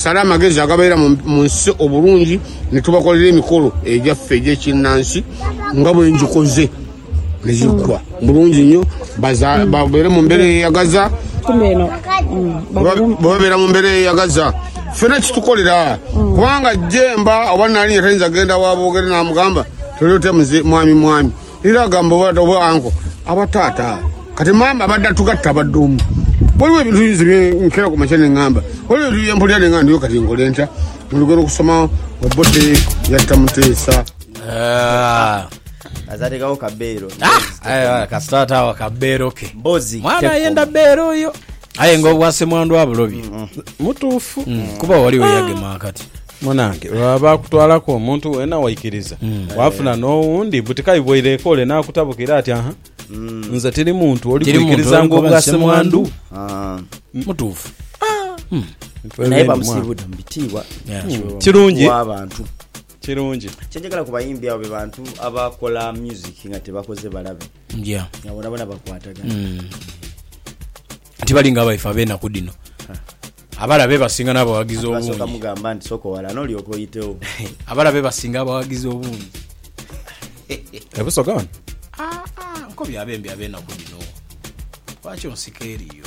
Sala amagezi agabeera mu nsi obulungi ni tubakolera emikolo egyaffe egy'ekinnansi nga bwe ngikoze ne giggwa bulungi nnyo. Babeere mu mbeera eyeyagaza. Bwe babeera mu mbeera eyeyagaza, ffena kitukolera kubanga Jemba oba Nnaalinya tayinza kugenda wa Boogere n'amugamba, Toli ote muze mwami mwami. Era agamba obwaato bwa anko aba taata kati maama abadha tugatta badha omu. Waliwo ebintu nze bye nkera ku makya ne ngamba waliwo ebintu bye mpulira ne nga ndiyo kati nkole ntya? Mulugeera okusoma Obote yatta Muteesa. Ah. Aze atekawo ka beero. Ah, aye kasita atawa ka beero ke. Mbozi. Mwana ayenda beero oyo. aye nga obwa semwandu abulobye mm. mutuufu mm. kuba waliwo ah. eyagema akati munange baba bakutwalaku omuntu wena waikiriza mm. wafuna nowundi butikaibwaireeko ole nakutabukira ati aha nze tiri muntu oli kwikiriza nga obwa semwandu ah. mutuufu ah. hmm. naye bamusibude mubitiibwa kirungi abantu kirungi kyenjagala ku bayimbi abo bebantu abakola music nga tebakoze balabe Tibali nga baife ab'enaku dhino abala bebasinga n'abawagizi obungi. Abala bebasinga abawagizi obungi. E Busoga wano? Aa, nko byabembi ab'enaku dhino. Lwaki onsika eriyo?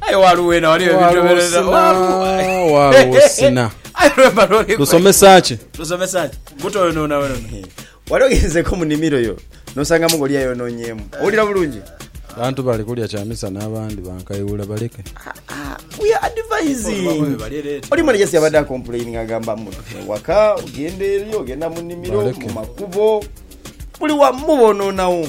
Aye waliwo wena waliwo ebitobereza waliwo sina lusomesa ki lusomesa ki buto oyo nona wena wali ogenzeko mu nimiro yo nosangamu ngoli yayononyemu owulira bulungi bantu bali kulya kyamisa n'abandi bankayuula baleke we are advising oli mwana just yabadde akomplaining agamba mutu waka ogenda eri ogenda mu nimiro mu makubo buli wamu bononawo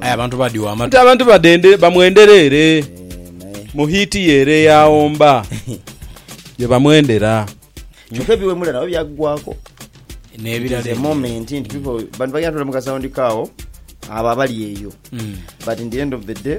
Aye abantu badhi wa matu. Ate abantu badende bamwendera ere mu hiiti ye ere eya Omba ye bamwendera. Kyoka ebiwemula nabyo byaggwaaku. N'ebirala It is a ebirala. moment nti people bantu bagenda tula mu ka sound kaawo abo abali eyo but in the end of the day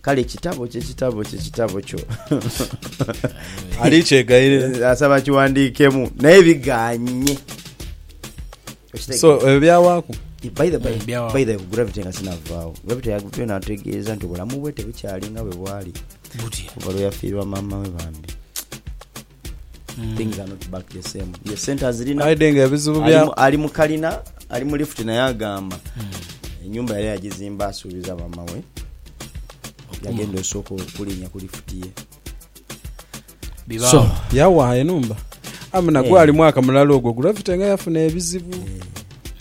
Kale kitabo kye kitabo kye kitabo kyo. Ali kyegaire. Asaba kiwandiikemu naye bigaanye. Okitegeera? So ebyo byawaaku. By the by, Byawa. by the way, gravity nga sinavaawo gravity yagutwe nategeeza nti obulamu bwe tebukyali nga bwe bwali Butya? kuva lwe yafiirwa maama we bambi things are not back the same ye sente azirina aide nga ebizibu bya ali mu- ali mu kalina ali mu lift naye agamba enyumba yali yagizimba asuubiza mama we yagenda osooka okulinya ku lift ye bibaawo yawaha enumba amuna Eh. gwali mwaka mulala ogwo gravity nga yafuna ebizibu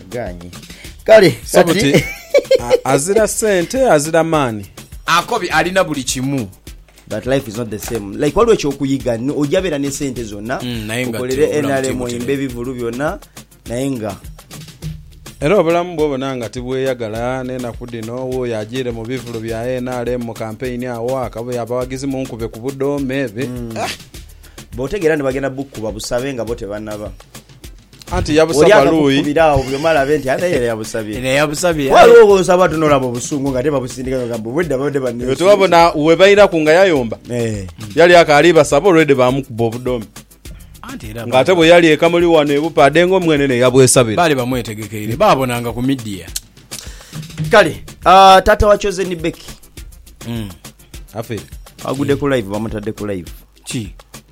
Aganyi. Kale kati Sabuti a- azira sente azira maani. Akobi alina buli kimu. but life is not the same like waliwo ekyokuyiga ni- ojja beera ne sente zonna Mm, naye nga okolere tebula nrm mutimbutire. oyimbe ebivulu byonna naye nga Era obulamu bwobona nga tibweyagala n'enaku dhino wuuyo ajiire mu bivulu bya NRM mu kampeyini awo akabuye abawagizi munkube ku budoome. Bi- bwotegeera nti bagenda bukuba busabe nga bo tebanaba Anti yabusa Oli baluyi. akakukubira agho buli omu alabe nti ate era yabusabye. Eno yabusabye. Ghaligho gw'osaba ate n'olaba obusungu nga ate babusindika nga gamba obwedda babadde Iwe banneesunga. tewabona we bairaku nga yayomba? Eh. Yali akaali basaba already baamukuba obudhoome. Anti era Nga ate bwe yali e Kamuli wano e Bupaade nga omwenene yabwesabira. baali bamwetegekeire. Baabonanga ku media. Kale, ah, taata wa Chosen Becky Afe. agudde ku live, bamutadde ku live. Ki?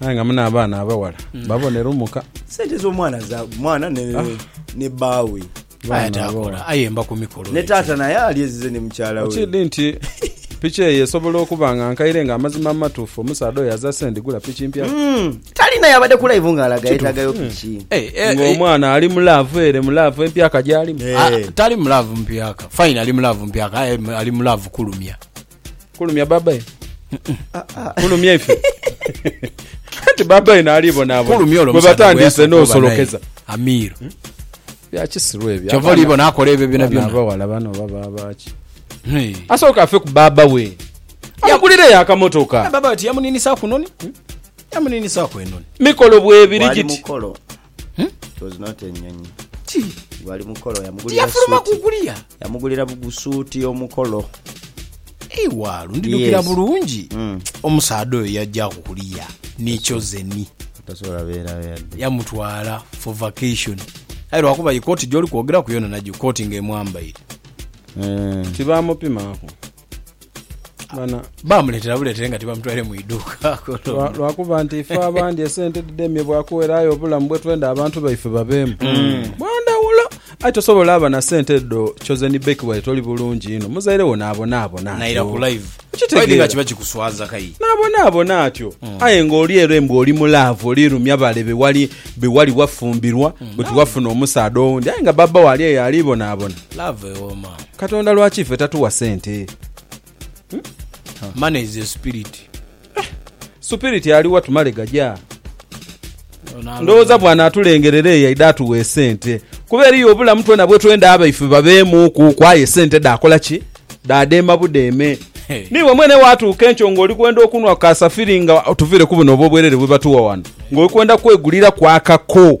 Aye nga mune abaana abaghala babo ne lumuka. Sente zo mwana za mwana ne ah. ne bawe. Aye takola aye mba kumikolo. Ne tata naye ali ezize ne mukyala we. Okidi nti piki eyo esobola okuba nga nkaire nga amazima amatuufu omusaadha oyo aza sendi gula piki mpya mm. talina yabadde ku live nga alaga yetagayo hmm. piki mm. hey, eh, hey, eh, nga eh. omwana ali mu laavu ere mu laavu empyaka gyalimu hey. Ah, tali mu laavu mpyaka fine ali mu laavu mpyaka ali mu laavu kulumya Kulumya babae? Kulumya ife? Anti babae naali bonaabona gwe batandiise n'osolokeza. Amir. Hmm? Bya kisiru ebyo. Kyova oli bona akola ebyo byona byona. Abawala bano baba baaki? Asooka afe ku baaba we. Amugulireyo akamotoka. Eh, baaba ati yamuninisa kunoni. Hmm? Yamuninisa kwenoni. Mikolo bwebiri giti. Hmm? It was not enyonyi. Ti. Gwali mukolo yamugulira Tiyafuluma suit. kukulia. Yamugulira bugusuuti omukolo. Ewa lundidukira Yes. bulungi. Mm. Omusaadha oyo yajja kukulia ni chosen. Tasobola beera yadde. yamutwala for vacation aye lwakuba yi kooti gyoli kwogeraku yona nagyo kooti nga emwambaire Eh. Tibamupimaaku. Bana, Baamuleetera buleetere nga tibamutwaire mu iduuka. lwa- lwakuba nti ife abandi esente dhidemye bwakuwera aye obulamu bwetwenda abantu baife babeemu bwandawulo aye tosobola aba na sente edho chosen beki waire toli bulungi inho muzaire wo nabonaabona Naira ku live. Okitegeera. Waidhi nga kiba kikuswaza kai. nabonaabona atyo aye nga oli ere mbu oli mulaavu olirumya bale bewali bewali wafumbirwa bwe tiwafuna omusaadha owundi aye nga baba wo ali eyo alibonaabona Love ewooma. Katonda lwaki fe tatuwa sente. Money is a spirit. Supiriti aliwa tumale gaja. Ndowooza bw'anaatulengerera eyo aidha atuwa esente. Kuba eriyo obulamu twena bwe twenda abaife babeemuuku ku aye esente dhaakola ki? Dhaadheema budheeme. Hey. Niiwe mwene waatuuka enkyo ng'oli kwenda okunhwa ku kasafiri nga tuviire ku buno obw'obwerere bwe batuwa wano ng'oli kwenda kweguliraku akako.